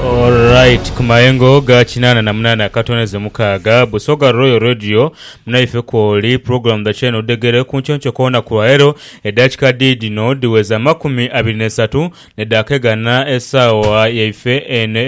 Alright, ku mayengo ga kinaana na munaana akatooneze mukaaga, Busoga Royal Radio, munaife kwoli, pulogulaamu dha Kyeeno Dhegere ku nky'onkyo koona ku lwaleero, edakika dhi dhino dhiweza amakumi abiri n'esatu ne daaka egana esaawa yaife eno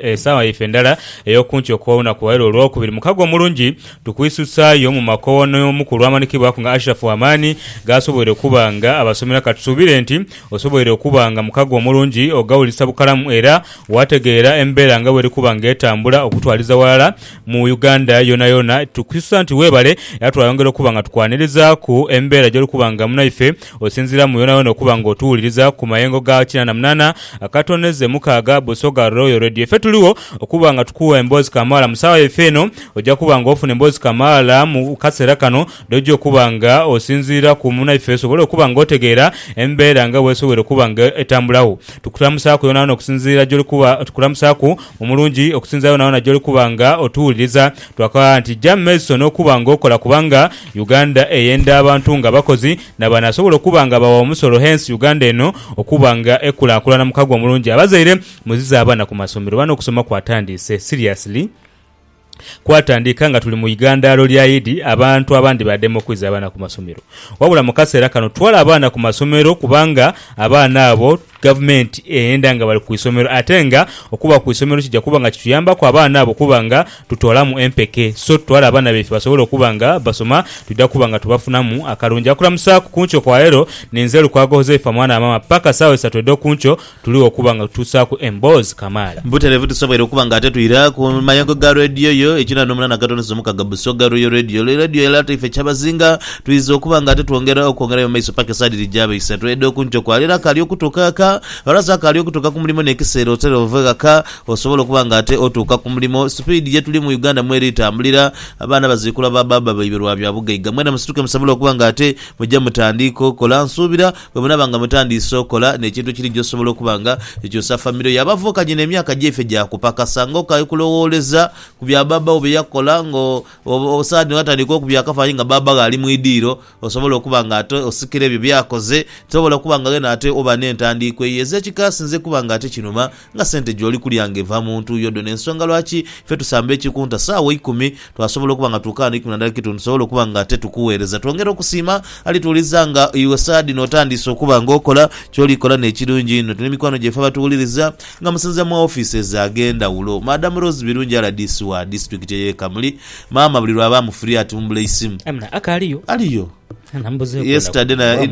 esaawa yaife endala ey'oku nkyo kw'olunaku lwaleero Olwokubiri. Mukago omulungi, tukwisusaayo mu makoowa n'omu ku lw'amanikibwaku nga Ashiraf Wamani g'asoboire okuba nga abasomera, katusuubire nti Osoboire okuba nga mukago omulungi ogaulisa bukalamu era waategeera embeera nga bweri kuba nga etambula okutwaliza ghalala mu Uganda yoonayoona. Tukususa nti weebale era twayongera okuba nga tukwanirizaaku embeera gy'oli kuba nga munaife osinziira mu yoonayoona okuba nga otuwuliriza ku mayengo ga kinaana munaana akatoneze mukaaga Busoga Royal Radio. Ife tuligho okuba nga tukuwa emboozi kamaala mu saawa yaife eno. Oja kuba nga ofuna emboozi kamaala mu kaseera kano. N'oja okuba nga osinziira ku munaife osobole okuba nga otegeera embeera nga bw'esobwoire okuba nga etambulagho. Tukulamusaaku yoonayoona okusinziira gy'oli kuba, tukulamusaaku mu mulungi okusinziira yoonayoona gy'oli kuba nga otuwuliriza. Twakagha nti ja mu maiso n'okuba nga okola kubanga Uganda eyenda abantu nga abakozi n'abanaasobola okuba nga bagha omusolo hence Uganda eno okuba nga ekulaakulana. Mukago omulungi. Abazaire muzize abaana ku masomero. Bano okusoma kwatandiise. Seriously. kwatandika nga tuli mu igandhaalo lya Idi abantu abandi badema okwiza abaana ku masomero. Wabula mu kaseera kano twala abaana ku masomero kubanga abaana abo Gavumenti eyenda nga bali ku isomero ate nga okuba ku isomero kija kuba nga kituyambaku abaana abo okuba nga tutoolamu empeke so tutwale abaana baife basobole okuba nga basoma twidha kuba nga tubafunamu akalungi. Akulamusaaku ku nkyo kwa leero ninze Lukwago Huzaifa mwana wa maama paka saawa isatu edh'oku nkyo Tuligho okuba nga tutuusaaku emboozi kamaala. Butereevu tusoboire okuba nga ate twira ku mayengo ga Radio yo ekinana omunana akatondezo mukaga Busoga Royal Radio. Lero Radio yalaata ife kyabazinga. Twidha okuba nga ate twongera okwongerayo mu maiso paka esaa dhiri gyaba isatu edh'oku nkyo kwa leero. Akaali okutuuka ghaka ghalaze akaali okutuuka ku mulimo n'ekiseera otera ove ghaka osobole okuba nga ate otuuka ku mulimo. Sipiidi ye tuli mu Uganda mweri tambulira. Abaana baziikulwa ba baaba baibwe lwa bya bugaiga. Mwena musituke musobole okuba nga ate muja mutandiika okola. Nsuubira. Bwe munaaba nga mutandiise okola n'ekintu ekiri gy'osobola okuba nga ekyusa famire yo, abavukanye n'emyaka gyaife gya kupakasa ng'okaali kulowooleza ku bya bbaabba wo bye yakola. Ng'osaani watandika okubya akafaananyi nga bbaabba gho ali mu idiiro, osobole okuba nga ate osikira ebyo by'akoze. Tobola kuba nga ghene ate oba n'entandiikwa eyo ez'ekikaasi nze kuba nga ate kinuma. Nga sente gy'oli kulya nga eva mu ntuuyo dho n'ensonga lwaki ife tusamba ekikunta saawa eikumi, twasobola okuba nga tukaano eikumi na ndala ekitundu tusobole okuba nga ate tukuweereza. Twongera okusiima alituwuliza nga iwe saadhino otandiise okuba nga okola ky'oli kola n'ekirungi inho. Tulina emikwano gyaife abatuwuliriza nga musinziira mu ofises ag'endhawulo. Madam Rose Birungi rdc wa disitulikiti ey'e Kamuli, Maama buli lw'aba amufiriye atumbula eisimu. Amina, akaaliyo? Aliyo. Yesterday na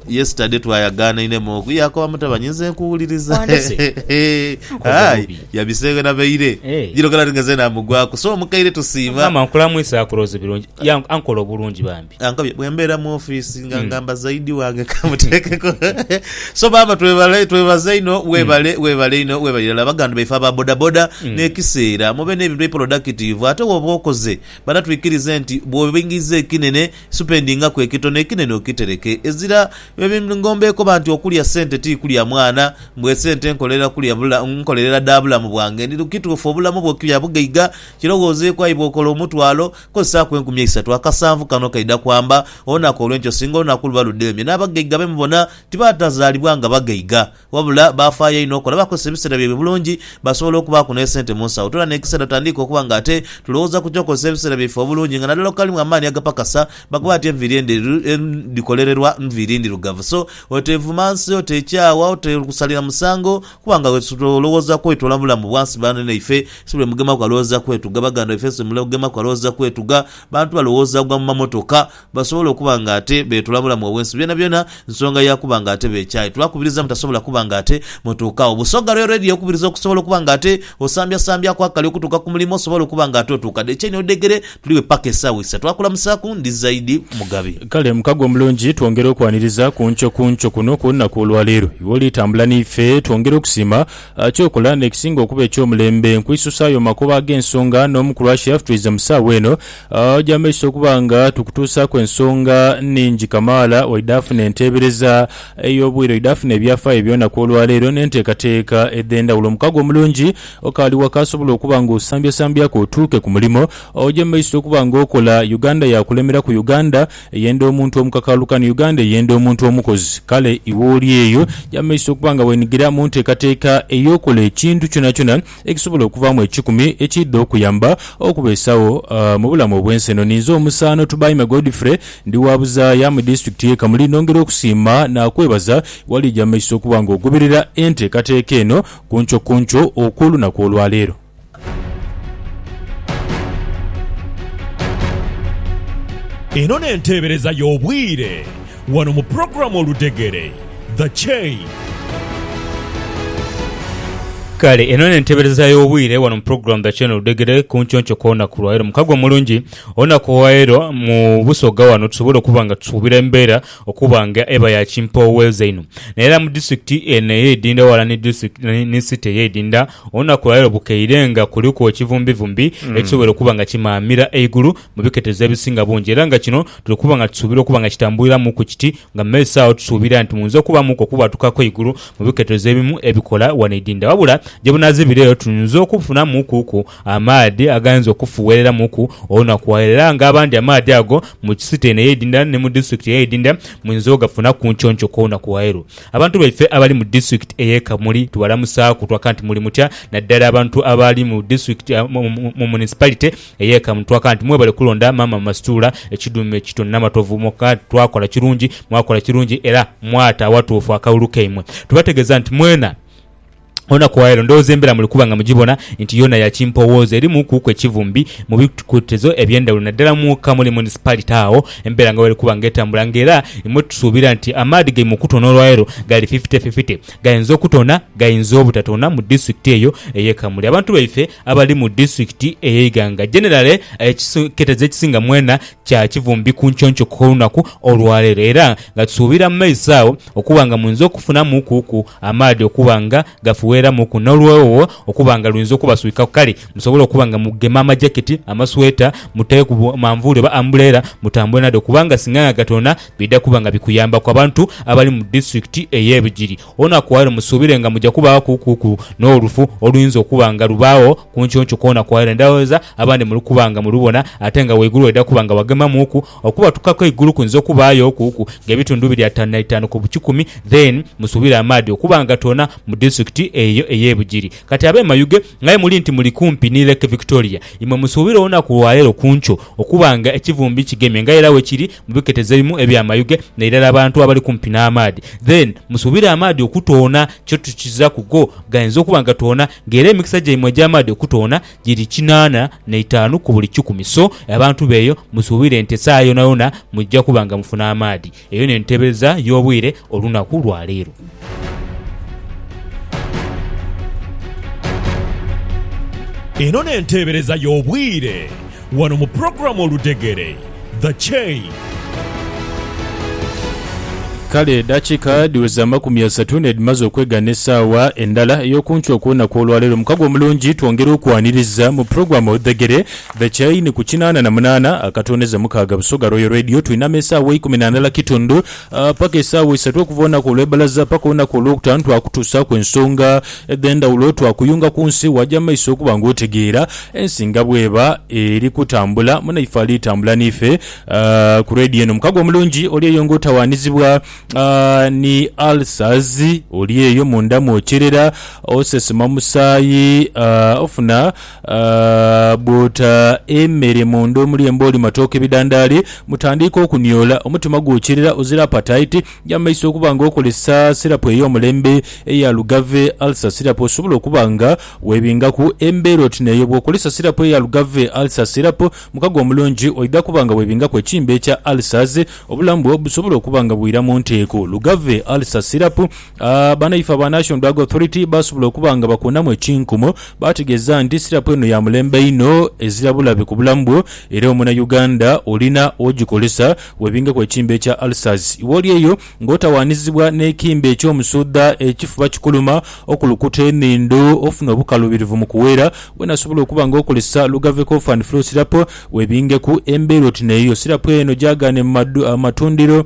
yesterday twayagaanainemu oku Yaakoba mutabani nze nkuwuliriza. Wandese. Hehe. Nkoze Aye bubi. yabisenghe na baire. Eh. Jiro kala ningenze namugwaku so omukaire tusiima. Maama nkulamwisa akulooze birungi. Ya ankola obulungi bambi. Ankabye bwembeera mu office nga ngamba zaidi wange kamuteekeko. So maama twebale twebaza inho webale webale inho webale irala baganda baife aba bodaboda nekiseera mube nebintu ebipolodakitivu ate woba okoze Bana twikirize nti bw'obingiiza ekinene, supendingaku ekitono, ekinene okitereke. Ezira bye ngomba ekoba nti okulya sente ti kulya mwana, mbu esente nkolerera kulya nkolerera dha bulamu bwange. Ndi kituufu obulamu bwo kya bugaiga? Kirowoozeeku ayi bw'okola omutwalo, kozesaaku enkumi eisatu. Akasanvu kano kaidha kwamba, olunaku olw'enkya osinga olunaku luba ludheemye. N'abagaiga be mubona tibaatazaalibwa nga bagaiga. Wabula baafaayo inho okola bakozesa ebiseera byaibwe bulungi basobole okubaaku n'esente mu nsawo. Tula n'ekiseera tutandiika okuba nga ate tulowooza ku ky'okozesa ebiseera byaife obulungi nga naddala okukalimu amaani agapakasa. Bakoba bati enviiri endheru dhikolererwa nviiri ndhirugavu. So, oteevuma nsi, oteekyaawa, oteesalira musango kuba nga olowooza kwetoola mu bulamu bwa nsi. Banene ife si buli mugemaku alowooza kwetuga. Baganda baife si buli mugemaku alowooza kwetuga. Bantu balowooza gwa mu mamotoka. basobola okuba nga ate beetula bulamu obw'ensi byonabyona, nsonga ya kuba nga ate beekyaye. Tubakubiriza mutasobola kuba nga ate mutuuka agho. Busoga lwe Radio ekubiriza okusobola okuba nga ate osambyasambyaaku akali okutuuka ku mulimo osobole okuba nga ate otuuka. Dhechaine odhegere tuli we paka esaawa eisa. Twakulamusaaku, ndi Zaidi Mugabi. Kale mukago omulungi twongera okwaniriza ku nkyo ku nkyo kuno ku lunaku olwaleero. Iwe oli tambula n'ife, twongera okusiima ky'okola n'ekisinga okuba eky'omulembe. Nkwisusaayo mu makubo ag'ensonga n'omu kulwasha ffe twaiza mu saawa eno. Aja amaiso okuba nga tukutuusaaku ensonga nhingi kamaala waidha afuna enteebereza ey'obwire, oidha afuna ebyafaayo eby'olunaku olwaleero n'enteekateeka edh'endhawulo. Omukago omulungi okaali wa kaasobola okuba ng'osambyasambyaku otuuke ku mulimo. Oja amaiso okuba ng'okola, Uganda yaakulemeraku. Uganda eyenda omuntu omukakaalukani, Uganda eyenda omuntu omukozi. Kale iwe oli eyo, ja amaiso okuba nga weenhigira mu nteekateeka ey'okola ekintu kyonakyona. ekisobola okuvaamu ekikumi ekiidha okuyamba okubeesagho mu bulamu obw'ensi eno. Ninze omusaano Tubaime Godfrey, ndi wa buzaaya mu disitulikiti y'e Kamuli nongera okusiima naakwebaza waliija mu maiso okuba nga ogoberera enteekateeka eno ku nkyo ku nkyo okw'olunaku olwaleero. Eno n'enteebereza y'obwire. Wano mu program Oludhegere, The Chain. Kale eno nentebereza yobwire wano mu program The Chain Oludhegere ku nkyoncho kwonaku lwaero mukago omulungi olunaku olwaero mu busoga wano tusobole okuba nga tusubira embera okuba nga eba ya kimpooweza inho naye era mu district eno eyeidinda wala ni district ni city eyeidinda olunaku lwaero bukeire nga kuliku ekivumbivumbi ekisobore okuba nga kimaamira eigulu mu biketezo ebisinga bungi era nga kino tuli kuba nga tusuubira okuba nga kitambuliramuku kiti nga mu maiso agho tusuubira nti muyinza okubamuku okubwatukaku eigulu mu biketezo ebimu ebikola wano idinda wabula gyebunazibireyo tuyinza okufunamukuku amaadhi agayinza okufuwereramuku olunakuaero era nga abandi amaadhi ago mu city eno ey'edinda ni mu district ey'edinda muyinza ogafuna ku nkyonky kw'olunakuaero Abantu baife abali mu district eye Kamuli tubalamusaaku twaka nti muli mutya naddala abantu abali mu district mu municipality Eyeka mu twaka nti mwebale kulonda maama Masituula ekiduume kito Namatovu mwoka nti twakola kirungi, mwakola kirungi era mwata awatuufu akalulu kaimwe. Tubategeeza nti mwena olunaku olwaleero ndowooza embeera muli kuba nga mugibona nti yoona ya kimpowooza erimu kuuku ekivumbi mu bikutezo eby'endhawulo naddala mwoka muli Municipality agho embeera nga bweri kuba nga etambula nga era imwe tusuubira nti amaadhi gaimwe okutoona olwaleero gali fifite fifite gayinza okutoona gayinza obutatona mu District eyo eye Kamuli. Abantu baife Abali mu disitulikiti eye Iganga jenerale ekiseketezo ekisinga mwena kya kivumbi ku nkyonkyoko gh'olunaku olwaleero era nga tusuubira mu maiso agho okuba nga muinza okufunamu ku ku amaadhi okuba nga gafuweeramu ku n'oluwewogho okuba nga luinza okubaswikaku kale musobole okuba nga mugema amajaketi, amasweta, muteeku manvuuli oba ambuleera mutambule nadho kubanga singa nga gatona bidha kuba nga bikuyambaku abantu abali mu disitulikiti eye Bugiri. Olunaku olwo musuubire nga muja kubaagho kuukuuku n'olufu oluyinza okuba nga lubaagho kunkyonkyuka olunaku olwo. Ndhoghoza abandi muli kuba nga mulubona, ate nga waigulu waidha kuba nga wagemamuuku. Okubatukaku eigulu kuyinza okubaayo okuuku ng'ebitundu biri ataanu na itaanu ku bukikumi. Then musuubire amaadhi okuba nga toona mu disitulikiti eyo ey'e Bugiri. Kati ab'e Mayuge, ng'aye muli nti muli kumpi ni Lake Victoria, imwe musuubire olunaku lwaleero kunkyo okuba nga ekivumbi kigemye nga era bwekiri Mubiketezeimu ebya mayuge na irala abantu abali kumpi na maadhi then musubire amaadhi okutoona kyo tukiza ku go gainza okuba nga toona nga era emikisa gyaimwe egya maadhi okutoona giri kinana na itaanu ku buli kikumi so abantu beyo musubire nti esaagha yonayona mujja kuba nga mufuna amaadhi eyo nentebeza yobwire Olunaku lwa leero. Eno n'enteebereza y'obwire wano mu pulogulaamu Oludhegere, The Chain. Kale edhakiika dhiweze amakumi asatu n'edhimaze okwegana esaawa endala ey'okunkyo okw'olunaku olwaleero. Mukago omulungi twongera okwaniriza mu pulogulaamu Oludhegere, The Chain ku kinaana na munaana akatooneza mukaaga Busoga Royal Radio. Twinama esaawa eikumi na ndala kitundu. Paka esaawa isatu okuva olunaku olw'ebbalaza paka olunaku olwokutaanu twakutuusaaku ensonga edh'endhawulo. Twakuyunga ku nsi waaja mu maiso okuba ng'otegeera ensi nga bw'eba eri kutambula. Munaife ali tambula n'ife ku leediyo eno. Mukago omulungi oli eyo ng'otawaanizibwa ni ulcers. Oli eyo munda mw'okyerera, osesema musaayi, ofuna. Bw'ota emere mu nda omuli embooli, matooke, bidandaali, mutandiika okuniola. Omutima gwokirira ozira apataiti ya maiso okuba nga okozesa sirapu ey'omulembe eya lugave, ulcer syrup, osobola okuba nga weebingaku embeera oti n'eyo. Bw'okozesa sirapu eya lugave, ulcer syrup, mukago omulungi oidha kuba nga weebingaku ekimbe kya ulcers, obulamu bwo busobola okuba nga bwira mu nteeko. Lugave, ulcer syrup. Banaife aba National Drug Authority baasobola okuba nga bakuunamu ekinkumu, baategeeza nti sirapu eno ya mulembe inho ezira bulabe ku bulamu bwo era omunayuganda olina ogikozesa webingeku ekimbe ekya ulcers. Wooli eyo ng'otawaanizibwa n'ekimbe eky'omusuudha, ekifuba kikuluma, okulukuta enhindo, ofuna obukaluubirivu mu kuweera, weena asobola okuba nga okozesa Lugave Cough and Flu Syrup webingeku embeera oti n'eyo. Sirapu eno gyagaane mu matundiro.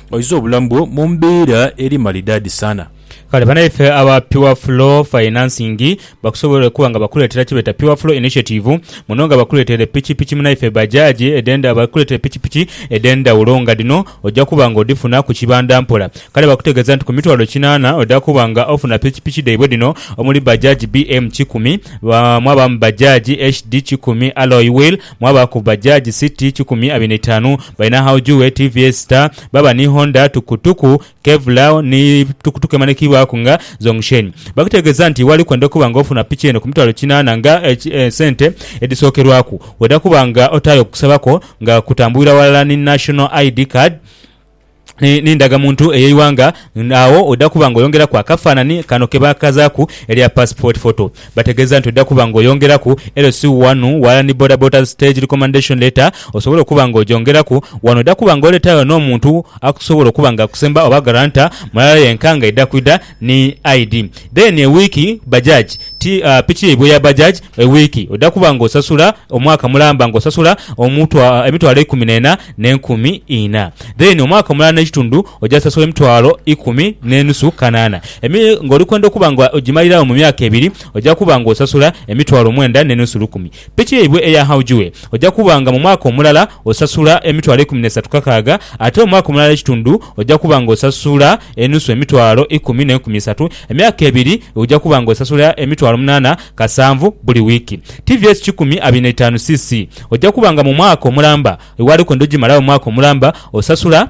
Oiza obulamu bwo mu mbeera eri malidaadi sana. Kale banaife aba Pure Flow Financing bakusobola okuba nga bakuleetera kyebeeta Pure Flow Initiative muno nga bakuleeteire pikipiki munaife Bajaaji edh'enda bakuleeteire pikipiki edh'endhawulo nga dhino ojja kuba nga odhifuna ku kibanda mpola. Kale bakutegeeza nti ku mitwalo kinaana ojja kuba nga ofuna pikipiki dhaibwe dhino omuli Bajaaji BM kikumi, mwabaamu Bajaaji HD kikumi Alloy Wheel, Mwabaaku Bajaj City kikumi abiri n'eitaanu, balina Haojue, tvs Star, baaba ni Honda Tukutuku, Kevlar ni tukutuku emanhikiibwaku nga Zhongsheng. Bakutegeeza nti wali kwenda okuba nga ofuna piki eno ku mitwalo kinaana nga sente edhisookerwaku, weeda kuba nga otaayo okusaba kwo nga kutambulira ghalala ni National ID Card, ni, ni ndagamuntu ey'eighanga, agho oidha kuba nga oyongeraku akafaanani kano ke baakazaaku erya passport photo. Bategeeza nti oidha kuba nga oyongeraku LC wanu, ghalala ni Bodaboda's Stage Recommendation Letter osobole okuba nga ogyongeraku. Wano oidha kuba nga oleetayo n'omuntu akusobola okuba nga akusemba oba guarantor mulala yenka nga aidha kwidha ni ID then a week bajaj ti piki yaibwe ya bajaj a week oda kuba nga osasula omwaka mulamba nga osasula emitwalo ikumi nena ne nkumi ina then omwaka mulala ne kitundu oja sasula emitwalo ikumi ne nusu kanana emi nga oli kwenda okuba nga ojimalira agho mu myaka ebiri oja kuba nga osasula emitwalo mwenda ne nusu lukumi. Piki yaibwe eya Haujue oja kuba nga mu mwaka omulala osasula emitwalo ikumi n'esatu kakaaga, ate omwaka omulala ekitundu oja kuba nga osasula enusu emitwalo ikumi n'enkumi isatu. Emyaka ebiri oja kuba nga osasula emitwalo munaana kasanvu buli wiiki. Tvs kikumi abiri na itaanu cc oja kuba nga mu mwaka omulamba, iwe aliko ndi ojimalawo omwaka omulamba osasula.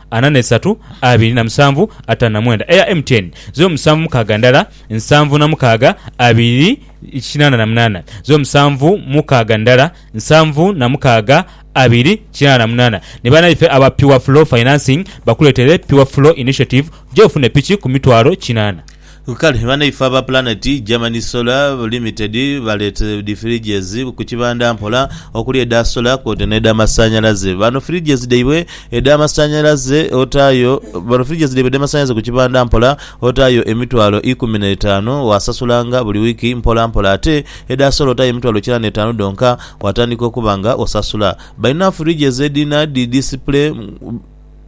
ana na isatu abiri na musanvu atano na mwenda eya MTN zeru musanvu mukaaga ndala nsanvu na mukaaga abiri kinana na munana zeru musanvu mukaaga ndala nsanvu na mukaaga abiri kinana na munana ni banaife aba Pure Flow Financing bakuletere Pure Flow Initiative gye ofune piki ku mitwalo kinana. Kale banaife aba Planet Germany Solar Limited baleeta dhi fridges ku kibanda mpola okuli edha solar kwoota n'edha masanhalaze. Bano fridges dhaibwe edha masanhalaze otaayo bano fridges dhaibwe edha masanhalaze ku kibanda mpola otaayo emitwalo ikumi n'etaanu waasasulanga buli wiiki mpola mpola ate edha solar otaayo emitwalo kinaana n'etaanu dhonka waatandika okuba nga osasula. Balina fridges edhina dhi display.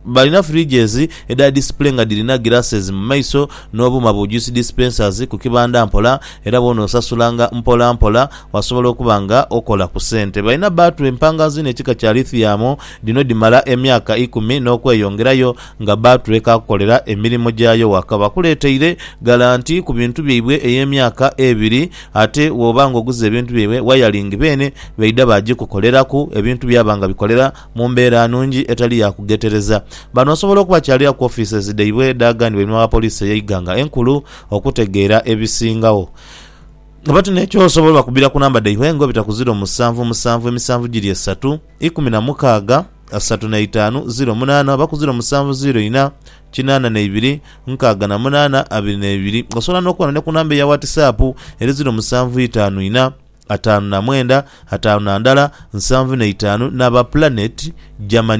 Balina fridges edha display nga dhirina glasses mu maiso n'obuuma bu juice dispensers ku kibanda mpola era bwona osasulanga mpola mpola wasobola okuba nga okola ku sente. Balina battery mpangazi n'ekika kya lithium, dhino dhimala emyaka ikumi n'okweyongerayo nga battery ekaakukolera emirimo gyayo waka. Bakuleeteire galanti ku bintu byaibwe ey'emyaka ebiri ate wooba ng'oguze ebintu byaibwe, wayalingi beene baidha baagikukoleraku ebintu byaba nga bikolera mu mbeera nungi etali ya kughetereza. Bano basobola okuba kyaliira ku offices dhaibwe edhaaganibwa einhuma wa poliisi ey'eighanga enkulu okutegeera ebisingagho. Bati n'ekyosobola obakubira ku namba dhaibwe nga obita ku ziro musanvu musanvu emisanvu giri esatu, ikumi na mukaaga, asatu na itaanu, ziro munaana oba ku ziro musanvu ziro ina, kinaana na ibiri, nkaaga na munaana, abiri na ibiri. Osobola n'okuba ni ku namba eya Whatsap eri ziro musanvu itaanu ina, ataanu na mwenda, ataanu na ndala, nsanvu na itaanu, n'aba Planet Germany.